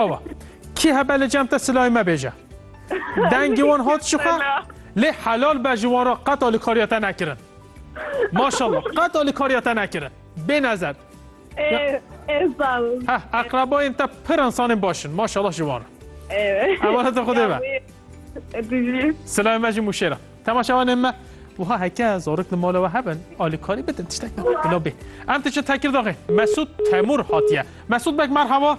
Ava. Kî hebe li cem te silayê me bêje. Dengê wan hat ji xwe lê helal be ji wan re qet alîkariya te nekirin. Maşallah qet alîkariya te nekirin. Bê nezer. Heh eqrebayên te pir insanên baş in. Maşallah ji wan re. Ewala te xwedê be. Silayê me ji mûşê re. Temaşevanên me wiha heke zarok li mala we hebin alîkarî bidin tiştek bidin. Bila bê. Em diçin Tekirdaxê. Mesûd Temûr hatiye. Mesûd bek merhaba.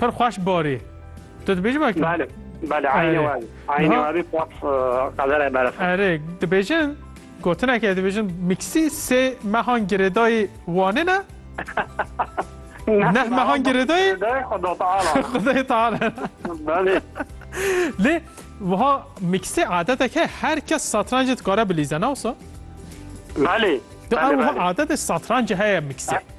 Pir xweş barî. Tu dibêjî wek? Belê, belê eynî we bî. Eynî we bî pop qederê berf. Erê, dibêjin gotinekê dibêjin mîksî sê mehan girêdayî Wanê ne? Neh mehan girêdayî? Girêdayî Xuda Teala ne. Xudayê Teala ne. Belê. Lê wiha mîksî adetek heye her kes satrancê dikare bilîze ne wisa? Belê. Di ew wiha adetê satrancê heye mîksî.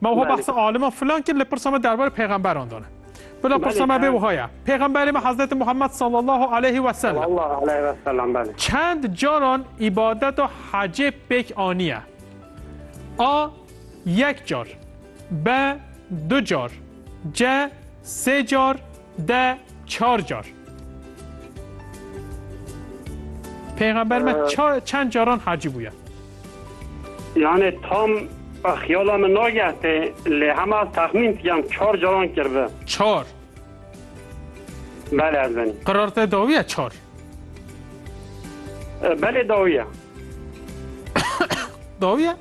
Ma wiha behsa alima filan kir lê pirsa me derbarê pêxemberan dane. Bila pirsa me bê wiha ye. Pêxemberê me Hezreti Muhammed sallallahu aleyhi ve sellem çend caran îbadeta hecê pêk aniye? A. Yek car B. Du car C. Sê car De çar car. Peygamber me çend caran hacî bûye? Yani tam xiyala min nagehte lê hema texmîn yan çar caran kirve. Çar. Bele ez benî. Qirar te dawiye çar. Belê dawiye. dawiye?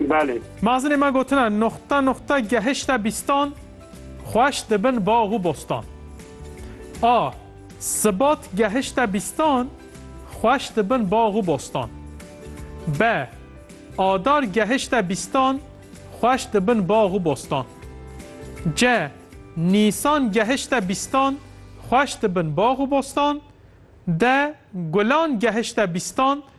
Belê. Mazinê me gotina Nuxta nuxta gehişte bîstan Xweş dibin bax û bostan A. Sibat gehişte bîstan Xweş dibin bax û bostan B. Adar gehişte bîstan Xweş dibin bax û bostan C. Nîsan gehişte bîstan Xweş dibin bax û bostan D. Gulan gehişte bîstan